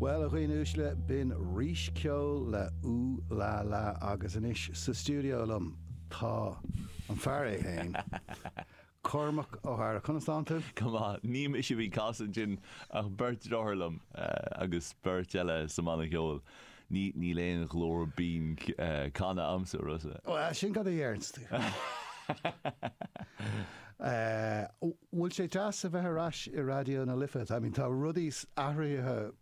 Bhuel, a dhaoine uaisle, b'in Rís Ceoil le Ooh La La agus anois sa stiúideo liom tá an fear é féin, Cormac Ó hEadhra. Conas tánn tú? Go maith. Ní mise a bhí ag casadh ansin ach beirt dearthár liom agus beirt eile sa mbanna ceoil. Níl aon ghlór binn canadh agamsa, a Rossa. Bhuel, sin cad a deireanns tú. bhfuil sé deas a bheith ar ais i Raidió na Life, I mean tá rudaí athraithe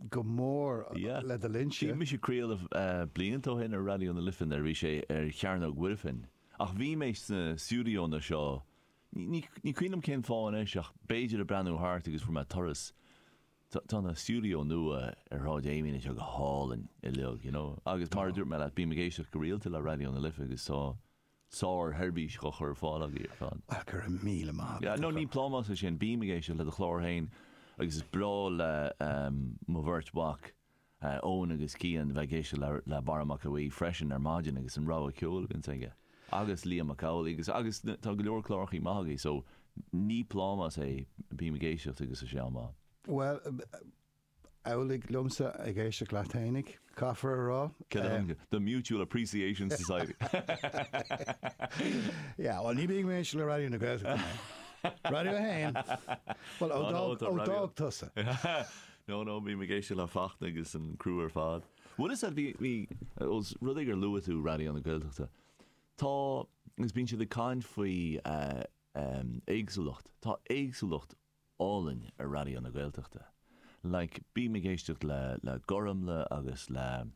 go mór Yeah, le do linnse. bhí mise ag craoladh blianta ó shin ar Raidió na Life nuair a bhí sé ar Chearnóg Mhuirfean ach bhí mé sna stiúdióanna seo, ní cuimhin liom cén fáth anois ach b'fhéidir ag breathnú thart agus fuair mé turas, tá na stiúdióanna nua ar Shráid Amiens anseo go hálainn uilig, you know, agus mar a dúirt mé leat bím ag éisteacht go rialta le Raidió na Life agus tá, sár-sheirbhís dhá cur ar fáil agaibh ar fad. Go raibh míle maith agat, a chara. Ní plámás é sin, bím ag éisteacht le do chlár féin agus is breá le mo bheirt mhac, Eoin agus Cian, bheith ag éisteacht le Barra Mac Aoidh freisin ar maidin agus an rogha ceoil a bhíonns aige, agus Liam Mac Amhlaigh agus, agus tá go leor clárachaí maith agaibh so ní plámás é, bím ag éisteacht agus tá sé an-mhaith. Bhuel, amhlaidh liomsa ag éisteacht leat fhéinig, caithfear a rá. Cinnte, the Mutual Appreciation Society. Yeah, bhuel ní bhíonn mé ag éisteacht le Raidió na Gaeltachta mé. Raidió a hAon? Bhuel, ó d'fhág tusa. No, no, bím ag éisteacht le Fachtna agus an criú ar fad. Bhuel is ea, bhí, bhí, os rud é gur luaigh tú Raidió na Gaeltachta, tá, agus bíonn siad ag caint faoi éagsúlacht, tá éagsúlacht álainn ar Raidió na Gaeltachta. Like, bím ag éisteacht le, le Gormfhlaith agus le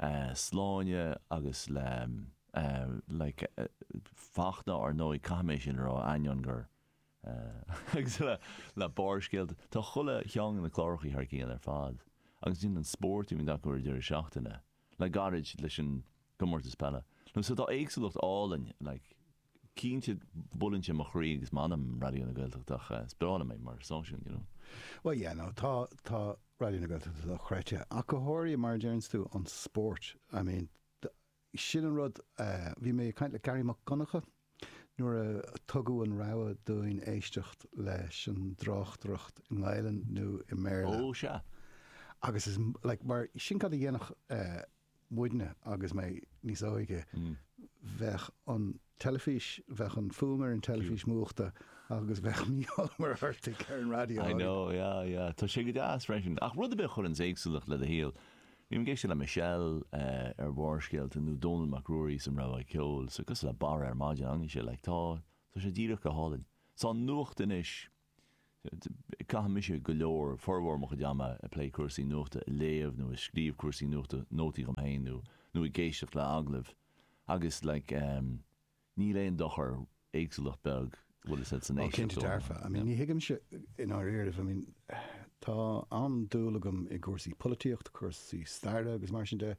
eh Sláine agus le eh like eh Fachtna ar ndóigh, caithfidh mé sin a rá, ainneoin gur eh agus le, le Barrscéalta, tá chuile cheann de na clárachaí thar cionn ar fad. Agus ansin an spórt a bhíonn acu ar an deireadh seachtaine, le gairid leis an gcomórtas peile. Nó so tá éagsúlacht álainn like. Cinnte, buaileann sé mo chroí agus m'anam, Raidió na Gaeltachta, ach is breá liom é mar stáisiún, you know. Bhuel, yeah, no, tá, tá Raidió na Gaeltachta dochreidte, ach go háirithe, mar a deireanns tú, an spórt. I mean, sin an rud, bhí mé ag caint le Garry Mac Donncha nuair a tugadh an rogha dúinn éisteacht leis an dtráchtaireacht i nGaelainn nó i mBéarla. Oh, sea. Agus is, like, mar, sin cad a dhéanfadh. muidne agus mé níos óige, bheadh an teilifís, bheadh an fuaim ar an teilifís múchta agus bheadh Mícheál Ó Muircheartaigh ar an raidió. I know, yeah, yeah. Tá sé go deas freisin. Ach rud ar bith a chuireanns éagsúlacht le do shaol, bím ag éisteacht le Michelle ar Bharrscéalta nó Dónall Mac Ruairí 's an rogha ceoil, 's cosúil le Barra ar maidin, ina dhiaidh sin, like, tá, tá sé díreach go hálainn. 'S tá an nuacht anois, Caitheann mise go leor, formhór mo chuid ama ag plé cúrsaí nuachta, ag léamh nó ag scríobh cúrsaí nuachta, nótaí dhom féin nó nó ag éisteacht le agallaimh agus like em níl aon dochar, éagsúlacht beag bhfuil fhios a'd san Oh cinnte éisteacht ó dearfa, I mean yeah. ní thuigimse i ndáiríre, I mean tá an-dúil agam i gcúrsaí polaitíocht, cúrsaí staire agus mar sin de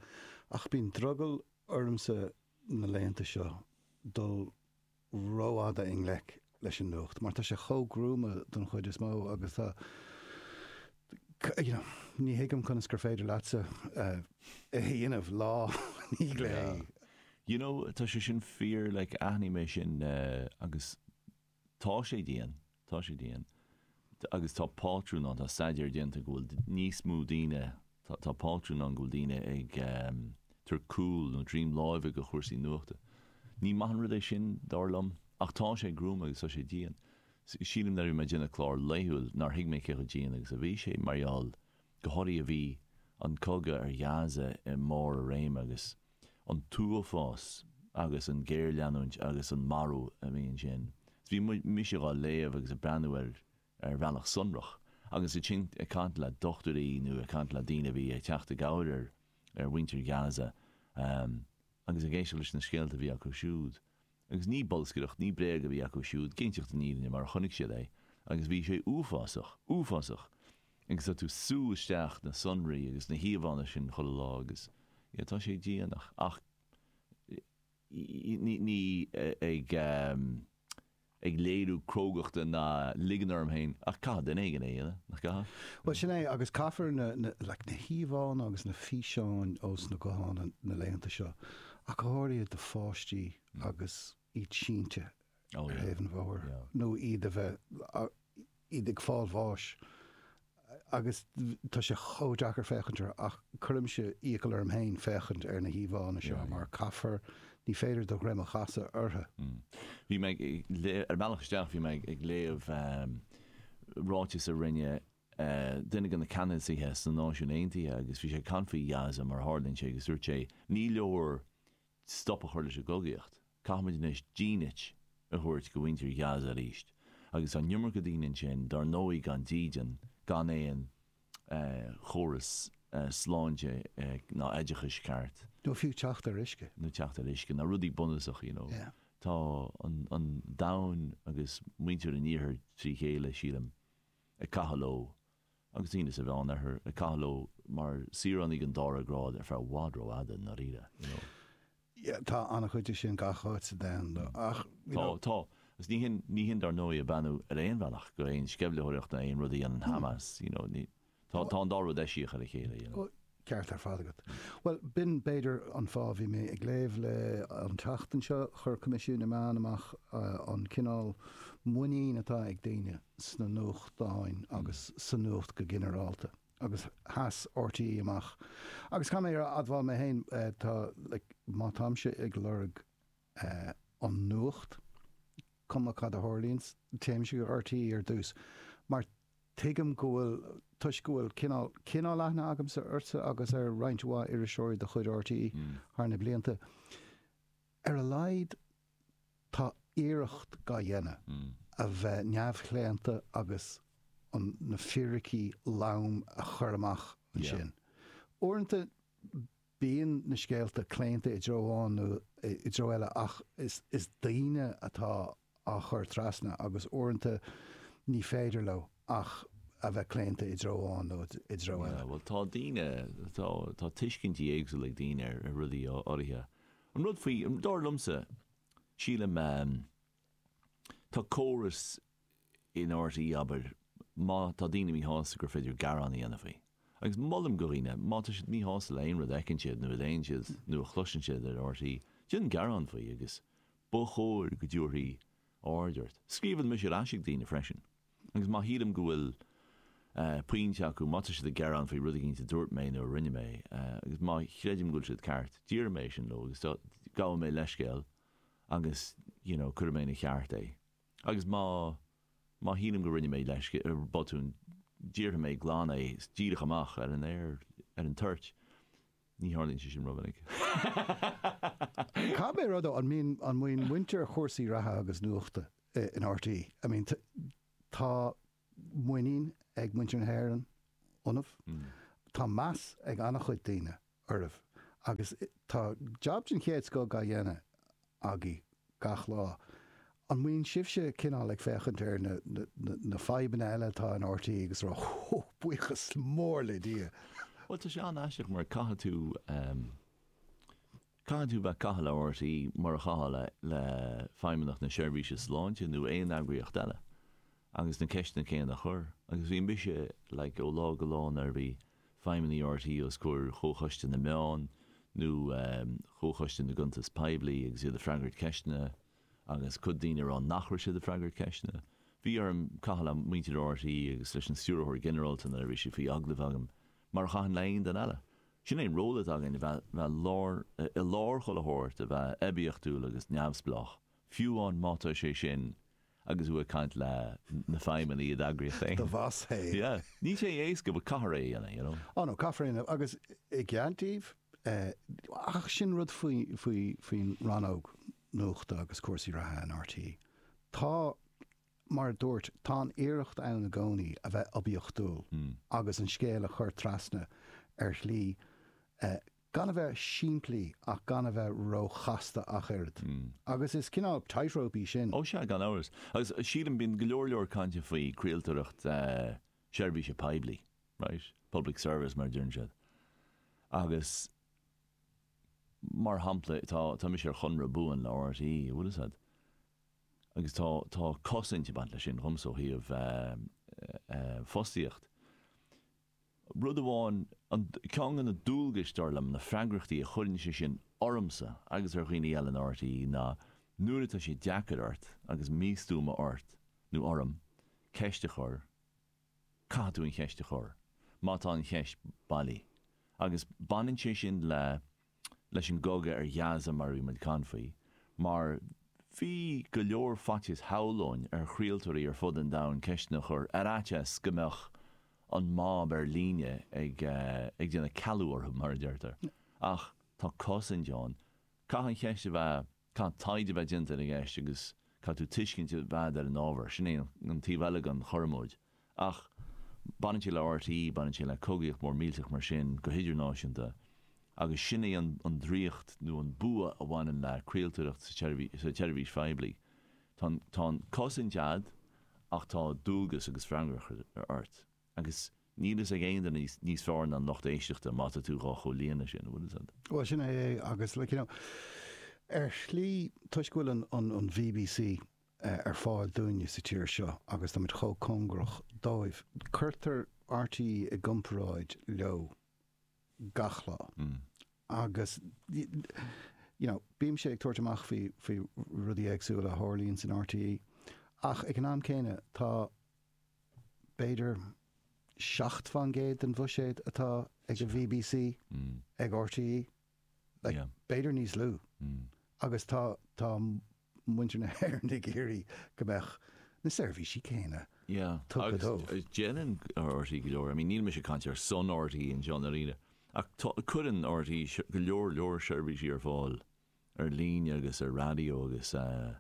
ach bíonn drogall ormsa na laethanta seo dul, rófhada i ngleic leis an nuacht mar tá sé chomh gruama don chuid is mó agus tá you know ní thuigim conas gur féidir leatsa é a dhéanamh lá i ndiaidh lae. you know tá sé sin fíor like aithním é sin agus tá sé dian Tá sé dian. Agus tá pátrún ann, tá staidéar déanta go bhfuil níos mó daoine, tá pátrún ann go bhfuil daoine ag tabhairt cúl nó droim láimhe go chúrsaí nuachta. Ní maith an rud é sin, dar liom, ach tá sé gruama agus tá sé dian. Sílim nuair a bhí mé ag déanamh clár laethúil nár thuig mé cé chomh dian agus a bhí sé mar gheall go háirithe bhí an cogadh ar Ghaza i mbarr a réime agus, an t-uafás agus an géarleanúint agus an marú a bhí ansin. Is bhí mise dhá léamh agus a' breathnú air ar bhealach sonrach agus ansin ag caint le dochtúirí nó ag caint le daoine a bhí ag teacht i gcabhair ar mhuintir Gaza agus ag éisteacht leis na scéalta a bhí acu siúd. Agus ní bolscaireacht, ní bréag a bhí acu siúd, ag inseacht an fhírinne mar a chonaic siad é, agus bhí sé uafásach, uafásach, agus tá tú sú isteach na sonraí agus na híomhánna sin chuile lá agus yeah tá sé dian ach ní ag. ag léiriú crógachta ná ligean orm féin, ach caithfidh duine éigin é a dhéanamh, nach gcaithfidh? Bhuel, sin é, agus caithfear na, na, like, na híomhánna agus na físeáin ós na gutháin na laethanta seo, ach go háirithe do pháistí agus iad sínte ar thaobh an bhóthair, nó iad a bheith, iad ag fáil bháis agus tá sé chomh deacair féachaint orthu ach cuirimse iachall orm féin féachaint ar na híomhánna seo mar caithfear, ní féidir do dhroim a chasadh orthu. Bhí mé ag léamh, ar an mbealach isteach bhí mé ag léamh ráiteas a rinne duine de na ceannasaithe sna Náisiúin Aontaithe agus bhí sé ag caint faoi Ghaza mar a tharlaíonn sé agus dúirt sé ní leor stop a chur leis an gcogaíocht. Caithfimid anois dínit a thabhairt go mhuintir Ghaza arís. Agus an iomarca daoine ansin, dár ndóigh, gan dídean, gan aon chóras sláinte ná oideachais ceart. Nó fiú teacht ar uisce. Nó teacht ar uisce. Na rudaí bunúsacha, you know. Tá an domhan agus muintir an Iarthair trí chéile, sílim, ag caitheamh leo. agus daoine sa Mheán Oirthear ag caitheamh leo mar shaoránaigh den dara grád ar feadh i bhfad ró fhada, i ndáiríre, you know. Yeah, tá an-chuid de sin gach áit sa domhan, though, ach, you know. Tá, tá, is ní shin, ní shin dar ndóigh ag beannú ar aon bhealach go aon sceimhlitheoireacht nó aon rud a dhéanann Hamas, you know, ní, tá, tá an dá rud eisiach ar a chéile, you know. ceart ar fad agat. Bhuel, b'in, b'fhéidir, an fáth a bhí mé ag léamh le an tseachtain seo. Chuir Coimisiún na Meán amach an cineál muinín atá ag daoine sna nuachtáin agus sa nuacht go ginearálta, agus sheas RTÉ amach. Agus caithfidh mé a admháil mé féin, tá, like, má táimse ag lorg, an nuacht, cuma cad a tharlaíonns, téimse go RTÉ ar dtús, mar tuigim go bhfuil, toisc go bhfuil cineál, cineál aithne agamsa ortsa agus ar roinnt mhaith iriseoirí de chuid RTÉ thar na blianta. Ar a laghad tá iarracht dá dhéanamh a bheith neamhchlaonta agus an, na fíricí lom a chur amach ansin. Uaireanta. Bíonn na scéalta claonta i dtreo amháin nó i dtreo eile ach is daoine atá á chur trasna agus uaireanta ní féidir leo ach a bheith claonta i dtreo amháin nó i dtreo eile. Bhuel, tá daoine, tá, tá tuiscintí éagsúla ag daoine ar rudaí áirithe. An rud faoi, dar liomsa, sílim, tá córas, in RTÉ abair, má tá daoine míshásta gur féidir gearán a dhéanamh faoi. Agus molaim do dhaoine, má tá siad míshásta le aon rud a fheiceann siad nó a léann siad nó a chloiseann siad ar RTÉ, déan gearán faoi agus ba chóir go dtabharfaí aird ort. Scríobhann mise ar ais ag daoine freisin agus má shílim go bhfuil eh pointe acu, má tá siad ag gearán faoi rud eicínt a dúirt mé nó a rinne mé, eh agus má chreidim go bhfuil siad ceart, déarfaidh mé é sin leo agus gabhaidh mé leithscéal agus you know cuirfidh mé ina cheart é. Agus má, má shílim go rinne mé let's say botún, déarfaidh mé glan é díreach amach ar an aer, ar an toirt. Ní tharlaíonn sé sin rómhinic. Caithfidh mé a rá, an mbíonn, an mbíonn muintir chúrsaí reatha agus nuachta in RTÉ? I mean, tá, muinín ag muintir na hÉireann ionaibh. Tá meas ag an-chuid daoine oraibh agus tá jab den chéad scoth á dhéanamh agaibh gach lá. An mbíonn sibhse cineál ag féachaint ar na fadhbanna eile atá in RTÉ agus a rá 'Ó, buíochas mór le Dia'? Bhuel, tá sé an-aisteach mar caithfidh tú. Caithfidh tú bheith ag caitheamh le RTÉ mar a chaitheá le Feidhmeannacht na Seirbhíse Sláinte nó aon eagraíocht eile agus na ceisteanna céanna a chur. Agus bhí mise, like, ó lá go lá nuair a bhí feidhmeannaigh RTÉ os comhair Chomhchoiste na Meán nó Chomhchoiste na gCuntas Poiblí agus iad ag freagairt ceisteanna agus cuid daoine ag rá nach raibh siad ag freagairt ceisteanna. Bhí orm caitheamh le muintir RTÉ agus leis an Stiúrthóir Ginearálta nuair a bhí sí faoi agallamh agam mar a chaithfinn le haon duine eile. Sin é an ról atá againn, a bheith i lár chuile shórt, a bheith oibiachtúil agus neamhspleách, fiú amháin má tá sé sin agus tú ag caint leis na feidhmeannaigh i d'eagraíocht féin. Do bhás é. Yeah. Níl sé éasca but caithfear é a dhéanamh, you know. Oh no, caithfear é a dhéanamh agus i gcead daoibh, ach sin rud áfach faoin rannóg nuachta agus cúrsaí reatha in RTÉ. Tá. Mar a dúirt, tá an iarracht ann i gcónaí a bheith oibiachtúil agus an scéal a chur trasna ar shlí gan a bheith simplí ach gan a bheith ró-chasta ach oiread. Agus is cineál tightrope í sin. Ó sea, gan amhras. Agus sílim, bíonn go leor leor cainte faoi craoltóireacht seirbhíse poiblí, right? Public service mar a deireann siad. Agus mar shampla, tá mise ar chonradh buan le RTÉ, an bhfuil fhios a'd? agus tá tá cosaint ag baint leis sin dhomsa ó thaobh fostaíocht. Rud amháin, an, ceann de na dualgais, dar liom, na freagrachtaí a chuireann sé sin ormsa agus ar dhaoine eile in RTÉ ná nuair atá sé deacair ort agus míostuama ort nó orm ceist a chur, caithfidh tú an cheist a chur má tá an cheist bailí agus baineann sé sin le leis an gcogadh ar Ghaza mar a bhí muid ag caint faoi, mar bhí go leor faitíos shamhlóinn ar chraoltóirí ar fud an domhain ceisteanna a chur ar fhaitíos go mbeadh an mob ar líne ag ag déanamh cealú orthu mar a deirtear. Ach tá cosaint ann. Caithfidh an cheist a bheith. Caithfidh taighde a bheith déanta ar an gceist agus caithfidh tú tuiscint a bheith agat ar an ábhar. Sin é an taobh eile den chothromóid. Ach baineann sé le RTÉ, baineann sé le cogaíocht mhór millteach mar sin go hidirnáisiúnta agus sin é an draíocht nó an bua a bhaineann le craoltóireacht sa tseirbhís phoiblí. Tá an chosaint a'd ach tá dualgas agus freagracht ort. Agus. Níl fhios ag aon duine níos fearr ná an lucht éisteachta má tá tú dhá chomhlíonadh sin, an bhfuil fhios a'd? Bhuel sin é é agus like you know ar shlí toisc go bhfuil an an an BBC ar fáil dúinne sa tír seo agus tá muid chomh cóngarach dóibh, cuirtear RTÉ i gcomparáid leo gach lá agus you know bímse ag tabhairt amach faoi faoi rudaí éagsúla a tharlaíonn san RTÉ ach ag an am céanna tá b'fhéidir 7 fán gcéad den bhuiséad atá ag an bbc ag RTÉ, like b'fhéidir níos lú agus tá tá muintir na hÉireann ag iarraidh go mbeadh na seirbhísí céanna tugtha dóibh. Agus déanann RTÉ go leor, I mean níl mise ag caint ar son RTÉ anseo i ndáiríre ach tá, cuireann RTÉ go leor leor seirbhísí ar fáil ar líne agus ar raidió agus eh,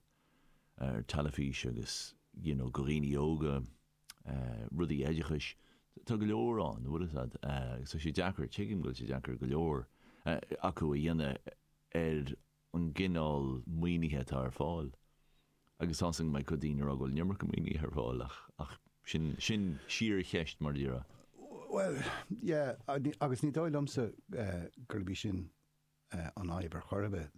ar teilifís agus you know go dhaoine óga rudaí oideachais tá go leor ann bhfuil a fhios agat agus tá sé deacair tuigim go bhfuil sé deacair go leor acu a dhéanamh ar an gcineál maoinithe atá ar fáil agus tá seans go mbeidh cuid daoine a rá go bhfuil an iomarca maoinithe ar fáil ach ach sin sin síorcheist mar a déarfá. Bhuel yeah agus ní dóigh liomsa gurb í sin an fhadhb ar chor ar bith.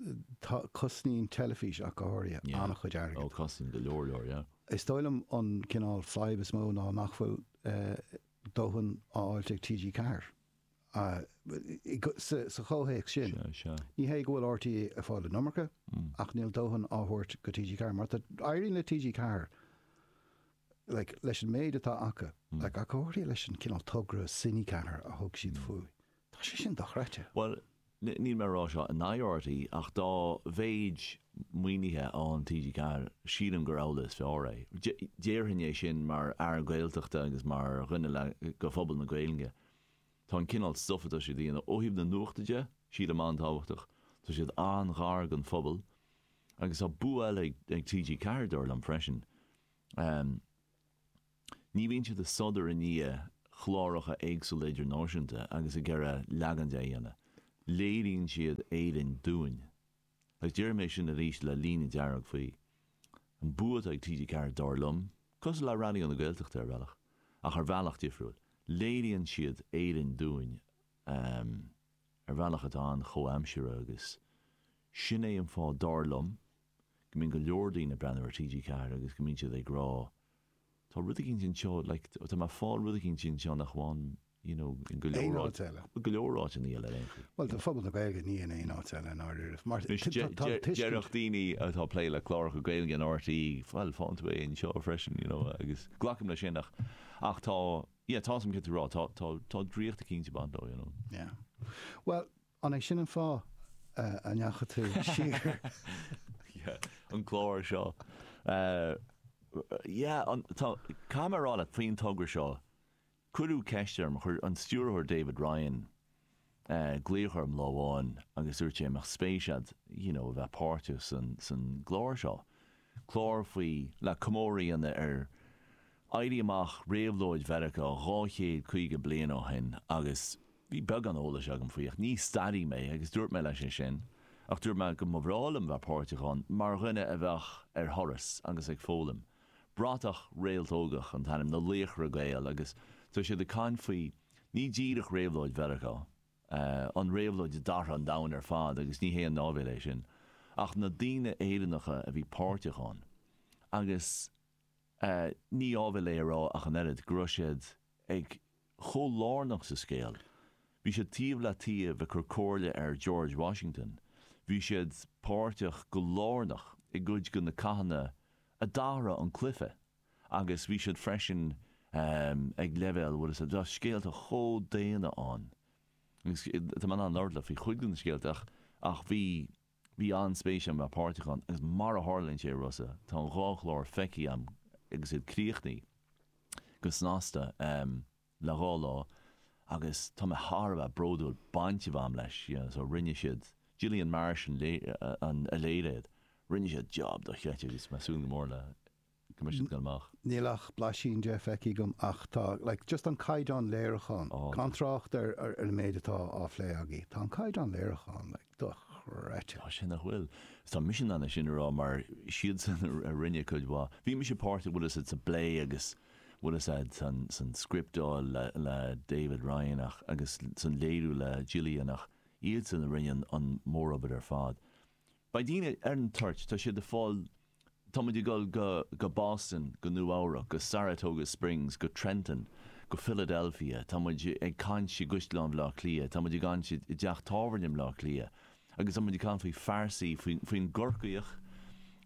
Tá, cosnaíonn teilifís ach go háirithe, Yeah. an-chuid airgid. Oh, cosnaíonn go leor leor, yeah. Is dóigh liom an cineál fadhb is mó ná nach bhfuil dóthain á fháilt ag TG Ceathair sa chomhthéacs sin. Sea, sea. Ní hé go bhfuil RTÉ ag fáil an iomarca ach níl dóthain á thabhairt go TG Ceathair mar éiríonn le TG Ceathair like leis an méid atá acu like ach go háirithe leis an cineál togra Cine 4 a thug siad faoi. Tá sé sin dochreidte. Bhuel, níl mé ag rá seo in aghaidh RTÉ ach dá mhéid maoinithe a fhaigheann TG4, sílim gur amhlaidh is fearr é. Déarfainn é sin mar fhear Gaeltachta agus mar dhuine le go phobal na Gaeilge. Tá an cineál stuif atá siad a dhéanamh, ó thaobh na nuachta de, sílim an-tábhachtach. Tá siad an-ghar don phobal. Agus tá bua eile ag TG4, dár liom, freisin. Ní bhíonn siad ag sodar i ndiaidh chláracha éagsúla idirnáisiúnta agus ag iarraidh leagan de a dhéanamh. Léiríonn siad Éirinn dúinn. Agus déarfaidh mé sin arís le líne dearg faoi. An bua atá ag TG4 dár liom, cosúil le Raidió na Gaeltachta ar bhealach, ach ar bhealach difriúil, léiríonn siad Éirinn dúinn ar bhealach atá an-chomhaimseartha agus sin é an fáth dár liom go mbíonn go leor daoine ag breathnú ar TG4 agus go mbíonn siad ag rá tá rud éigin anseo, like, tá mé ag fáil rud éigin anseo nach bhfaighim, you know, in go leor áit, bhuel, go leor áiteanna eile ar aon chaoi. Bhuel, do phobal na Gaeilge, ní in aon áit eile i ndáiríribh, mar tá tuiscint. Déarfadh daoine atá ag plé le cláracha Gaeilge in RTÉ, bhuel, faigheann tú é anseo freisin, you know, agus glacaim le sin ach, ach tá, yeah, tá, tá, tá, tá, tá draíocht eicínt ag baint leo, you know. Yeah. Bhuel, An é sin an fáth a ndeachaigh tú siar? Yeah, an clár seo. Yeah, an, tá, caithfidh mé a rá leat, faoin togra seo, cuireadh ceist orm, chuir an stiúrthóir David Ryan glaoch orm lá amháin agus dúirt sé an mbeadh spéis agat, you know, a bheith páirteach san, san gclár seo. Clár faoi, le comóradh a dhéanamh ar, Éirí amach réabhlóide Mheiriceá dhá chéad caoga bliain ó shin agus bhí beagán eolais agam faoi ach ní staraí mé agus dúirt mé leis é sin ach dúirt mé go mba bhreá liom bheith páirteach ann mar dhuine a bheadh ar thuras agus ag foghlaim. Bratach réaltógach an t-ainm, na Laochra Gael agus tá siad ag caint faoi ní díreach réabhlóid Mheiriceá, an réabhlóid a d'athraigh an domhan ar fad agus ní haon áibhéil é sin, ach na daoine Éireannacha a bhí páirteach ann agus. Ní áibhéil é a rá ach an oiread, go raibh siad ag chomh lárnach sa scéal. Bhí siad taobh le taobh ag cur comhairle ar George Washington, bhí siad páirteach go lárnach i gcuid de na cathanna a d'athraigh an cluiche agus bhí siad freisin ag leibhéal bhfuil 'fhios a'd scéalta chomh daonna ann agus tá mé in ann labhairt leat faoi chuid de na scéalta ach bhí Bhí an-spéis agam a bheith páirteach ann agus mar a tharlaíonn sé, a Rossa, tá an dhá chlár feicthe agam agus iad críochnaithe go snasta le dhá lá agus tá mé thar a bheith bródúil baint a bheith agam leis, you know. Rinne siad, Gillian Marsh a léirigh iad, rinne siad jab dochreidte agus tá mé ag súil go mór le. go mbeidh siad ag goil amach. níl ach blaisín de feicthe agam ach tá like just an caighdeán léiriúcháin, gan trácht ar an méid atá á phlé agaí, tá an caighdeán léiriúcháin like dochreidte. tá sé nach bhfuil. is tá mise in ann é sin a rá mar is iadsan a rinne cuid mhaith. Bhí mise páirteach bhfuil 'fhios a'd sa bplé agus bhfuil 'fhios a'd san san scripteáil le le David Ryan ach agus san léiriú le Gillian ach iadsan a rinne an an mórobair ar fad. Beidh daoine ar an toirt, tá siad ag fáil, tá muid ag dul go Boston, go Nua Eabhrac, go Saratoga Springs, go Trenton, go Philadelphia, tá muid ag caint i gCaisleán Bhaile Átha Cliath, tá muid ag caint i dteach tábhairne i mBaile Átha Cliath agus tá muid ag caint faoi phearsaí, faoin gCorcaíoch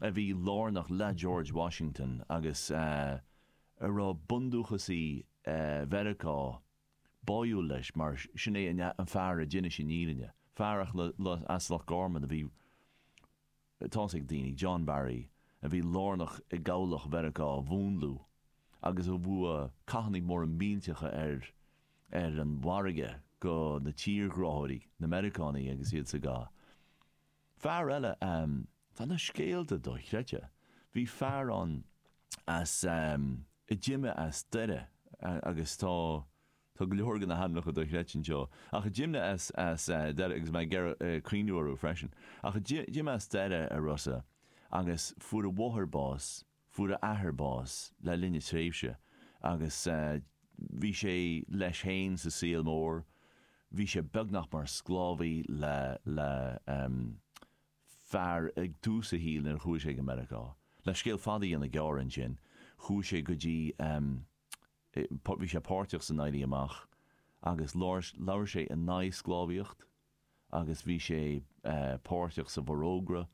a bhí lárnach le George Washington agus a raibh bundúchasaigh Mheiriceá báúil leis mar sin é an fear a d'inis an fhírinne, fear eile as Loch Garman a bhí, tá a fhios ag daoine, John Barry, a bhí lárnach i gCabhlach Mheiriceá a mhúnlú agus a bhua cathannaí móra millteacha ar ar an bhfarraige go na tírghráthóirí, na Meiriceánaigh agus iad sa gcath. Fear eile, Ehm, tá na scéalta dochreidte. Bhí fear ann as ehm, a d'imigh as Doire agus tá, tá go leor de na hainmneacha dochreidte anseo, ach a d'imigh as, as eh, Doire agus mé ag iarraidh eh, cuimhniú orthu freisin, ach a d'imigh as Doire, a Rossa, agus fuair a mháthair bás, Fuair a athair bás le linn na tréimhse agus bhí sé leis féin sa saol mór. Bhí sé beagnach mar sclábhaí le le fear ag tús a shaoil nuair a chuaigh sé go Meiriceá. Le scéal fada a dhéanamh gearr ansin, chuaigh sé go dtí, bhí sé páirteach san Éirí Amach agus labhair sé in aghaidh sclábhaíocht. agus bhí sé páirteach sa bhforógra,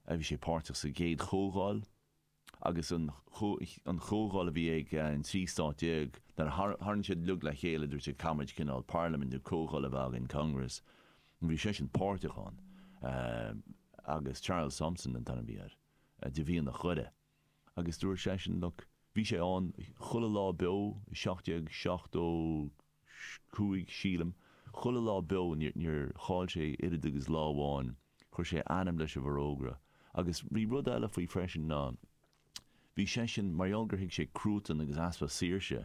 bhí sé páirteach sa gcéad chomhdháil agus an an chomhdháil a bhí ag an trí stát déag nuair a tharraing siad uilig le chéile dúirt sé caithfimid cineál parlaimint nó comhdháil a bheith againn, congress, bhí seisean páirteach ann agus Charles Thomson an t-ainm a bhí air de mhianach Dhoire. agus dúirt seisean, look, bhí sé ann chuile lá beo i seacht déag seachtó cúig, sílim, chuile lá beo, níor chaill sé oiread agus lá amháin, chuir sé a ainm leis an bhForógra. Agus bhí rud eile faoi freisin ná, bhí seisean, mar gheall gur thuig sé cruatan agus easpa saoirse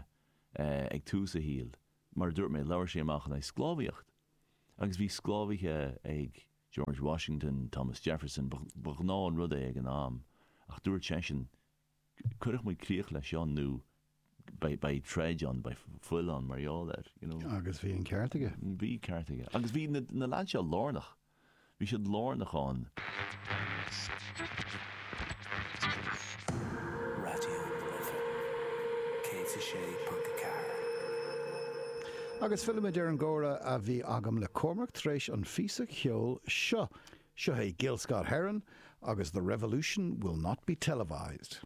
ag tús a shaoil, mar a dúirt mé, labhair sé amach in aghaidh sclábhaíocht, agus bhí sclábhaithe ag. George Washington, Thomas Jefferson, ba ghnáth an rud é ag an am, ach dúirt seisean, cuirfidh muid críoch leis seo nó beidh troid ann, beidh fuil ann mar gheall air, you know. Agus bhí an ceart aige. Bhí ceart aige. Agus bhí na lads seo lárnach, bhí siad lárnach ann. Raidió na Life 106.4. Agus fillimid ar an gcomhrá a bhí agam le Cormac tar éis an phíosa cheoil seo. Seo é Gil Scott Heron agus The Revolution Will Not Be Televised.